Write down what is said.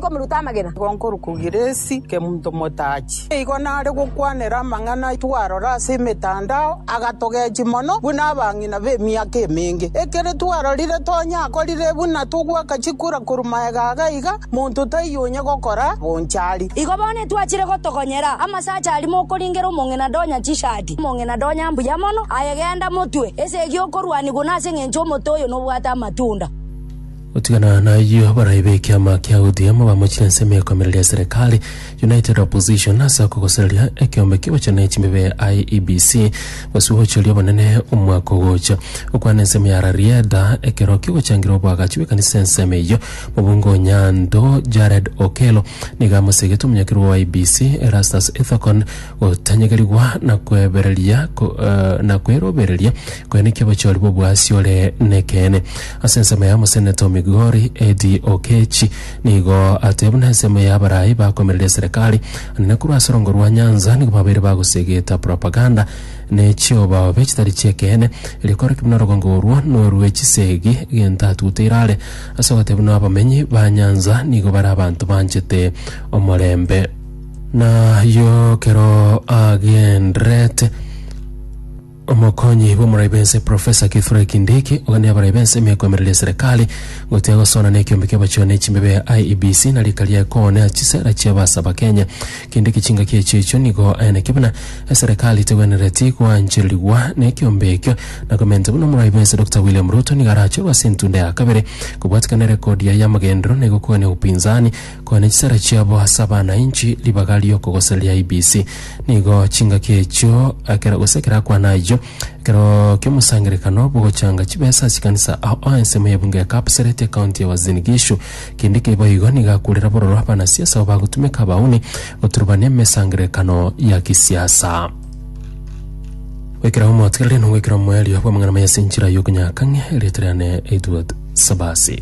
komiruta amagena. Nkorwa Kugiresi, Kemonto Motachi. Nigo nare gokwanera amang'ana aye twarora ase emetandao, agatogechia mono buna abang'ina b'emiaka emenge. Ekero twarorire tonya akorire buna togoaka chikura korwa magega aga iga, monto taiyo onye gokora bonchari. Igo bono etwachire gotogonyera amasacha aria mokoringera omong'ina donya chishati, omong'ina donya mbuya mono, aye genda motue esegi okorwani buna ase engencho omote oyo nobwate amatunda. Gotigana nayio, abarai b'ekiama kia ODM bamochire ense ime ekoimereria eserekari, United Opposition, ase okogosereria ekeombe ki'ogochorania chimebe IEBC gose gochiria obonene omwaka ogocha. Okwana ense ime ya Rarieda ekero ki'ogochangira oboagachi bw'ekanisa ense ime eyio, mobunge o Nyando Jared Okello nigo amosegete omonyakerwa o IEBC Erastus Ethekon gotanyegerigwa na kwebereria ko- eh, na kwerobereria koenekia obochori bw'oboasia ore nekeene. Ase ensemo ya moseneto Migori, Eddie Okechi nigo atoe buna ensemo ya abarai bakoimereria eserekari na korwa ase orongo rwa Nyanza nigo babeire bagosegeta propaganda ne chiobaobe chitari chi'ekeene erio koreki buna orogongo orwo norwe chisegi gento atutire are ase ogoteba buna abamenyi ba Nyanza nigo bare abanto banchete omorembe. Nayio kero agendererete. Omokonyi bw'omorai bw'ense Professor Kithure Kindiki ogania abarai b'ense emiaka emereri ya Serekari gotiga gosoana n'ekiombe ki'abachore n'echimbebe ya IEBC na rika riaye koonea chisera chi'abaase Abakenya. Kindiki chingaki echio ichio nigo aye naki buna eserekari tegwenereti goanchererigwa n'ekiombe ekio na komenta buna omorai bw'ense Doctor William Ruto nigo arachorwe ase entunda ya kabere kobwatikana erekodi yaye y'amagenderero na igokogania obupinzani Kwane chisara chiabo ase abana inchi ribaga ri'okogosera ria IBC. Nigo chingaki echio ekero gose ekero akwana ayio ekero ki'omosangerekano bw'ogochanga chibesa ase chikanisa ao ao ensemo ya ebunge ya Kapseret ekaunti ya Uasin Gishu. Kende keiba igo nigo akurera bororo abanasiasa abo bagotumeka abauni goturubania emesangerekano ya kisiasa. Goikera omotigereri nogwekera omoerio bw'amang'ana maye ase enchera y'okonyakang'ia erieta riane Edward Sabasi.